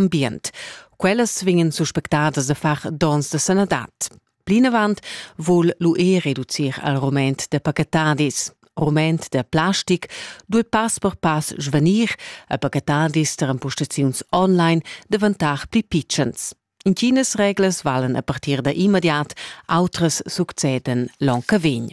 ambient. Quellas vegnan suspectadas a far dons de sanadad. Plinavant vul l'UE reducir al rument de pacatadis. Rument de plastic dul pass per pass svanir a pacatadis ter impostaziuns online davantar pli pitschens. Intinas reglas valen a partir da immediat, outras succeden l'onca vegn.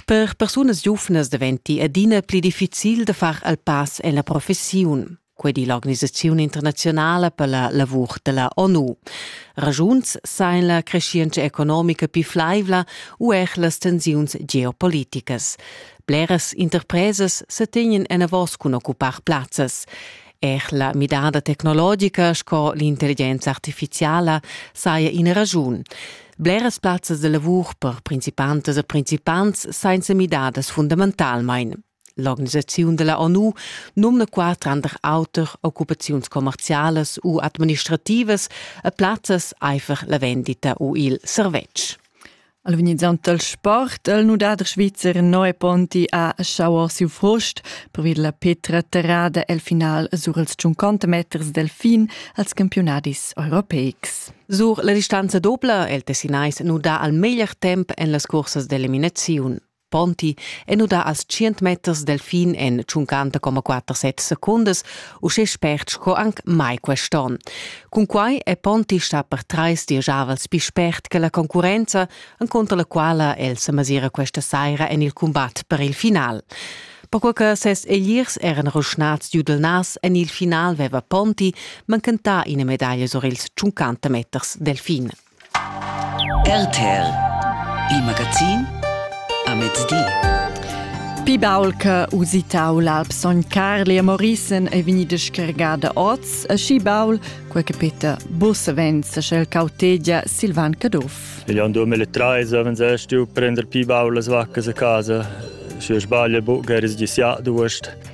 Per persunas giuvnas daventi adina pli difficil da far il pass en la professiun. Quei di l'organisaziun internazionala per la lavur dalla ONU. Ragiuns sain la crescienza economica più flaivla u er las tensiuns geopoliticas. Bleras interpresas sa tegnen enavos cun occupar plazzas. Er la midada tecnologica sco l'intelligenza artificiala saja ina raschun. Bleras plazzas da lavur per principantas e principants sainza midadas fundamentalmain. L'organisaziun da la ONU numna qua tranter auter occupaziuns commerzialas u administrativas e plazzas aifer la vendita u il servetsch. Al venizzant dal sport el nudader svizzer Noe Ponti ha schauer siu frust per la petra terrada el final sur els 50 meters delfin als campionadis europeics. Sur la distanza dobla el Tessinais nuda al meglier temp en las cursas d'eliminaziun. Ponti è nudà als 100 meters del fin en 50,47 secundas, uschè spert sco anc mai quest'onn. Cunquai è Ponti stà per trais dieschavels pli spert che la concurrenza, encontro la quala el se masira questa saira en il combat per il final. Perquai che ses egliers eran ruschnads giu del nas, en il final veva Ponti mancantà ina medaglia sur ils 50 meters del fin. RTL Il magazin a mezdi. Pi baul che usitau l'Alp Sogn Carli a Morissen è vegnida schergada oz, e schi baul, quei che Peter Bussevenz sch'el cautegia Silvan Caduff. Io in 2013 wenn se stu prender pi baulas vacches a casa, schi sbaglia bu geris gisiat d'uost.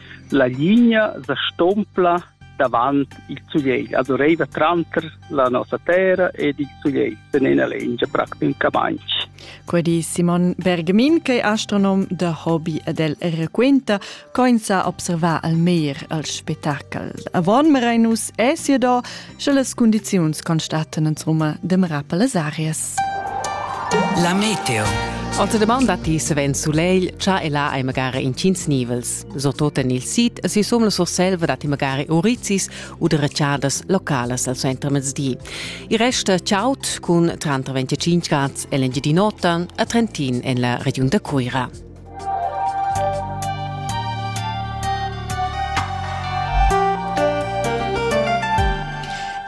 La ligna sa stompla davant il sulegl, also reiva tranter la nossa terra ed il sulegl sen ena lengia practicamaintg. Quei di Simon Bergamin, che è astronom da hobby ed el requenta, co ins ha observà al mer al spettacol. A Von Merinus è sia da Sche las cundiziuns constatan ins Roma demera per las arias. La meteo. Anta deman datti savens sulegl, cha e là hai magari intgins nivels. So toten il sit e si som la Surselva datti magari orizis u de reciadas localas al centro mezdi. Il resta chaut cun tranter 25 grad e l'engiadin'ota a Trentin en la regiun da Cuira.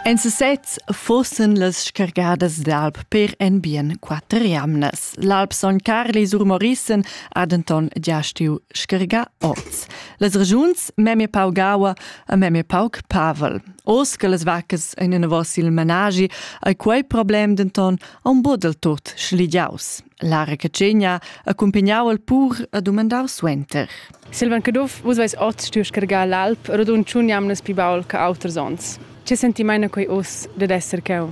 En sesez fussen las scargadas d'alp per en bien quatter jamnas. L'alp Son Carli sur Morissen ha denton gia stiu scargà oz. Las regiuns memie pau gaua e memie pauc pavel. Oz che las vaccas ein anavos il managi, ei quei problem denton a un bod del tot schligiaus. La recatschegna accumpagnau el pur a dumandar suenter. Silvan Caduff, vus veis oz stuiu scargar l'alp rodund tschun jamnas pli baul che auters onns. Che senti meina quei uss dad esser cheu?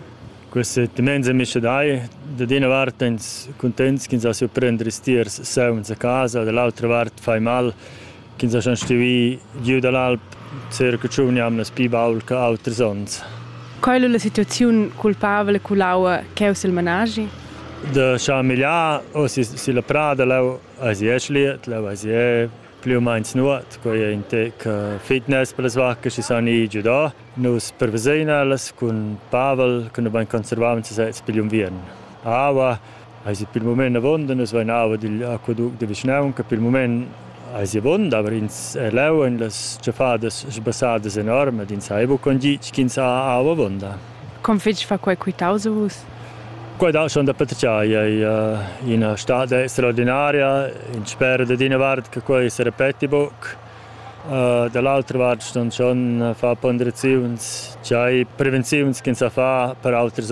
Questa dimensione missionai da d'ina vart ins contents ch'ins ha su prendere stiers saun a casa, dall'altra vart fai mal ch'ins ha schon stuì giu dall'alp circa tschun jamnas pli baul che auters onns. Quai è la situaziun culpabla cun l'aua ch'è sil manaschi? Da schamigliar o si la prada leu as i eschliet, leu as i plü u meins nuot, quei è in tec fitness per las vaccas che san ir giu da. Nus prevesein ellas cun Pavel, che nu bain conservavan sesez pigl unviern. Aua Eisi pil mument avon de nus vein aua digl aquaduct de vischnaunca. Pil mument eisi avon aber ins è leu en las tschaffadas sbassadas enorme ins ha buca con gitg ch'ins ha aua avonda. Com fetg fa quei quitaus a vus? Quei dat schon da patratgar. Ei ina stad straordinaria. Ins spera da d'ina vart che quei se repeti buc. Da l'autra vart ston schon far ponderaziuns, tgei prevenziuns ch'ins sa far per auters